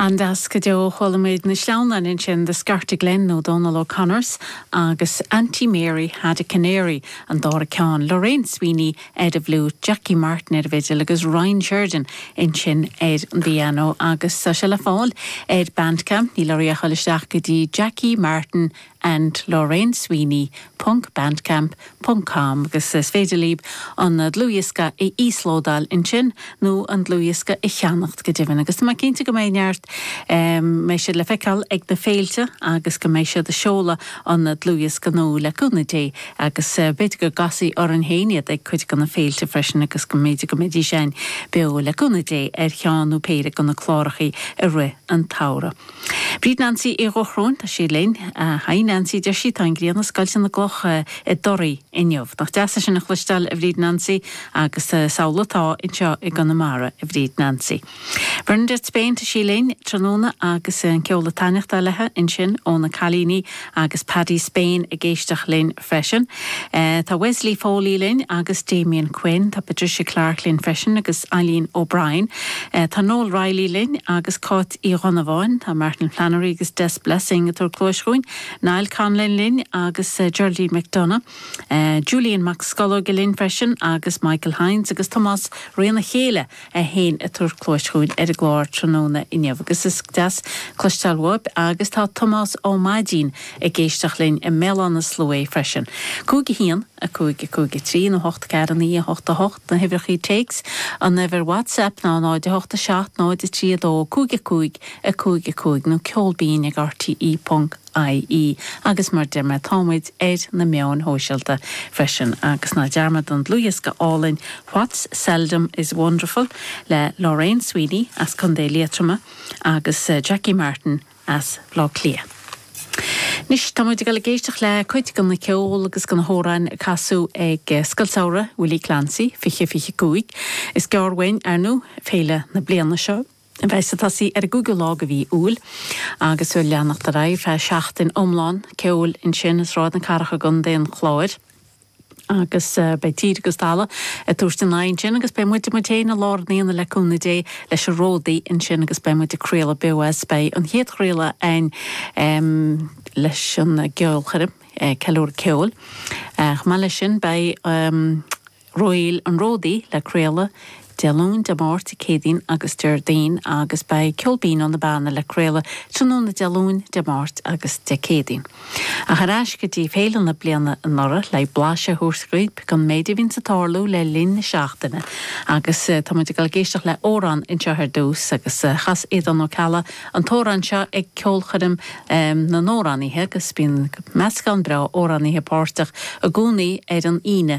Nach deas go deo a chuala muid na sleamhnáin ansin, Scarta Glen nó Dónal O'Connors agus Aunty Mary Had a Canary, an dara ceann, Lorraine Sweeney ar an bhfliúit, Jackie Martin ar an bhfidil agus Ryan Sheridan ansin ar an bpianó. Agus tá sé le fáil ar Bandcamp, níl oraibh ach a chur isteach go dtí Jackie Martin and Lorraine Sweeney ponc Bandcamp ponc com agus is féidir libh an dlúthdhiosca a íoslódáil ansin nó an dlúthdhiosca a cheannacht go deimhin agus tá mé cinnte go mbeidh neart mbeidh siad le feiceáil ag na féilte agus go mbeidh siad ag seoladh an dlúthdhiosca nua le cúnamh Dé agus b'fhéidir go gcasfar orainn féin iad ag cuid de na féilte freisin agus go mb'fhéidir go mbeidís ann beo le cúnamh Dé ar cheann nó péire de na cláracha í i rith an tsamhraidh. Bríd Nancy Uí Dhúgáin, tá sí linn. Bríd Nancy, deir sí, tá an ghrian ag scoilteadh na gcloch i dToraí inniu. Nach deas é sin a chloisteáil, a Bhríd Nancy. Agus is amhlaidh atá anseo i gConamara, a Bhríd Nancy. Bernadette Spain, tá sí linn, tráthnóna, agus an ceol ag taitneachtáil léithi ansin ó na cailíní Agus Paddy Spain ag éisteacht linn freisin. Tá Wesley Foley linn agus Damian Quinn. Tá Patricia Clarke linn freisin agus Eileen O'Brien. Tá Noel Reilly linn agus Cáit Uí Dhonnabháin. Tá Martin Flannery agus Des Blessing ag tabhairt cluais dhúinn. Niall Conlon linn agus Geraldine McDonagh. Julian Mac Scolóige linn freisin agus Michael Hynes agus Tomás Reanna Chéile. Tá siad ag tabhairt cluais dhúinn ar an gclár tráthnóna inniu agus is deas cloisteáil uathub agus tá Tomás Ó Maidín ag éisteacht linn i mBéal Átha na Sluaighe freisin. Cúig a haon, a cúig, a cúig a trí, nó a hocht a ceathair a naoi, a hocht a hocht, na huimhreachaí téics, an uimhir whatsapp ná 0 8 7 0 3 2 5 5 5 5 nó ceol binn ag rte. ie. Agus mar a deir mé, tá muid ar na meáin shóisialta freisin. Agus ná dearmadaigí an dlúthdhiosca álainn What's Seldom is Wonderful le Lorraine Sweeney as Co. Liatroma agus Jackie Martin as Baile Átha Cliath. Anois tá muid ag dul ag éisteacht le cuid den cheol agus de na hamhráin a casadh ag Scoil Samhraidh Willie Clancy 2025. Is gearr uainn, ar ndóigh, féile na bliana seo. Beidh sé ag tosaí ar an gcúigiú lá de mhí Iúil agus beidh ag leanacht ar aghaidh ar feadh seachtain iomlán ceoil ansin i Sráid na Cathrach i gContae an Chláir agus beidh tír agus talamh ag tabhairt a n-aghaidh ansin agus beidh muid muid féin i lár an aonaigh le cúnamh Dé leis an ródaí ansin agus beidh muid ag craoladh beo as. Beidh an chéad chraoladh a'ainn leis an gceolchoirm, Ceiliúradh Ceoil. Chomh maith leis sin beidh. Réill an Ródaí le craoladh Dé Luain, Dé Máirt, Dé Céadaoin agus Déardaoin agus beidh Ceol Binn ó na Beanna le craoladh tráthnóna Dé Luain, Dé Máirt agus Dé Céadaoin. Ach ar ais go dtí féile na bliana anuraidh le blaiseadh a thabhairt dhaoibh den méid a bhíonns ag tarlú le linn na seachtaine agus tá muid ag dul ag éisteacht le amhrán anseo ar dtús agus chas Aodán Ó Ceallaigh an t-amhrán seo ag ceolchoirm na n-amhránaithe agus bíonn meascán breá amhránaithe páirteach i gcónaí ar an Aoine